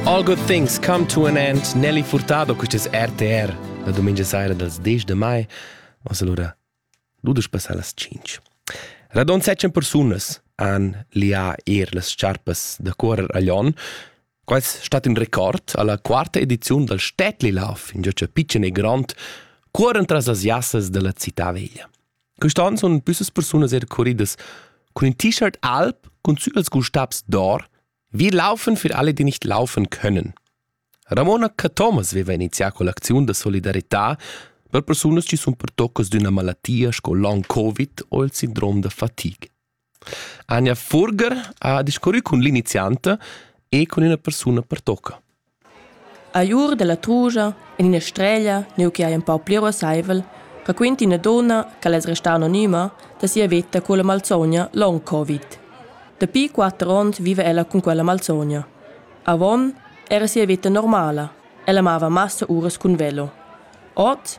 All good things come to an end. Nelly Furtado, questo è RTR, la domenica sera dal 10 de mai. Mas allora, ludes passar las 5. Radon secen persunas han lià er las sciarpas da cuorer aglion. Quais stat in record alla quarta edizione dal Städtlilauf, in gioccio pitschen e grand, cuoren tras las jassas della città veglia. Quest'ann sun büssas persunas er curridas cun in T-Shirt alb cun Zügels Gustabs d'or, wir laufen für alle, die nicht laufen können. Ramona Cathomas veva inizià con l'acziun da solidarità per persunas chi sun pertoccas d'üna malattia sco long-covid o il sindrom da fatig. Anja Furger ha discurrü cun l'inizianta e cun üna persuna pertocca. A ur da la trugia, in ina streglia, neu che ei empau pli ruasseivel, raquinta ina donna ch'ella es restà anonima da sia veta con la malsogna long covid. Dapi quatter onns viva ella cun quella malsogna. Avon era sia veta normala. Ella amava massa uras cun velo. Oz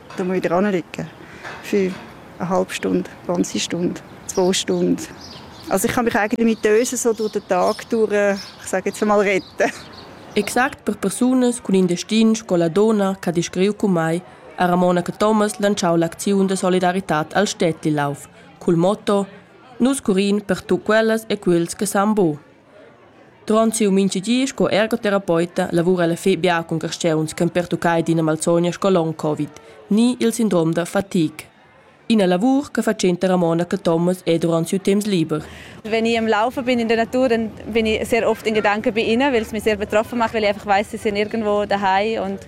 Da moi dran liegen. Für eine halbe Stunde, 20 Stunden, zwei Stunden. Also ich kann mich eigentlich mit Dösen so durch den Tag durch, ich sage jetzt mal, retten. Exact per persunas cun in destin sco la donna che ha descriu cu mai ha Ramona Thomas lanciau l'acziun de solidaritat al Städtelauf cul motto Nus curin per tu quellas e quels che san bo. Duront siu mintga di sco ergoterapeuten lavura ella fetg bia cun carstgauns ch'han pertuccai d'ina malsogna sco long covid ni il sindrom da fatigue. Ina lavur che fatschenta Ramona Cathomas è durant siu temps liber. Wenn ich am Laufen bin in der Natur, dann bin ich sehr oft in Gedanken bei ihnen, weil es mich sehr betroffen macht, weil ich einfach weiß, sie sind irgendwo daheim und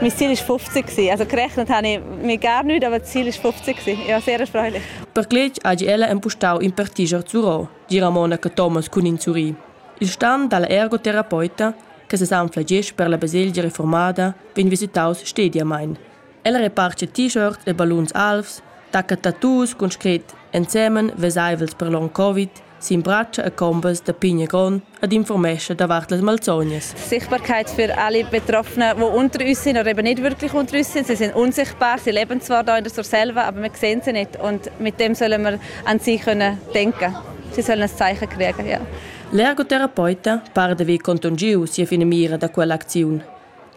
Mein Ziel war 50. Also gerechnet habe ich mir gar nichts, aber das Ziel war 50. Ich war sehr erfreulich. Per glück ha ella empustau in partiger zurau, di Ramona che Thomas cun in zuri. Il stan dalla ergoterapeuta, che se s'anflagesch per la baselgia reformada, vegn visitaus stediamein. Ella reparche t-shirt e balluns alvs, tacca tattoos cun scret ensemen vesaivels per long covid sin bratscha e combas da pigna grond ed informescha davart las malsognas. Sichtbarkeit für alle Betroffenen, die unter uns sind oder eben nicht wirklich unter uns sind. Sie sind unsichtbar, sie leben zwar da in der selber, aber wir sehen sie nicht und mit dem sollen wir an sie können denken. Sie sollen ein Zeichen kriegen, ja. L'ergoterapeuta parda vi contungiu sia finamira da quell'acziun.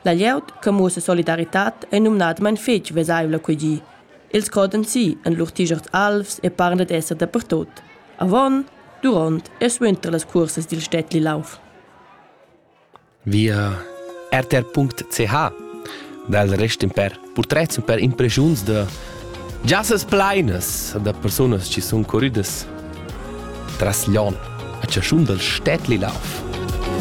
La glieud che musa solidaritat è numnadamain fitg vesaivla qui gi. Els godan si en lur tigerts alvs e parlan d'esser dapertut. Avon, duront e suenter las cuorsas dil Städtli Lauf. Via rtr.ch dal rest per purtrets per impresiuns da giassas pleinas da persunas che sun curridas tras l'on a chaschun dal Städtli Lauf.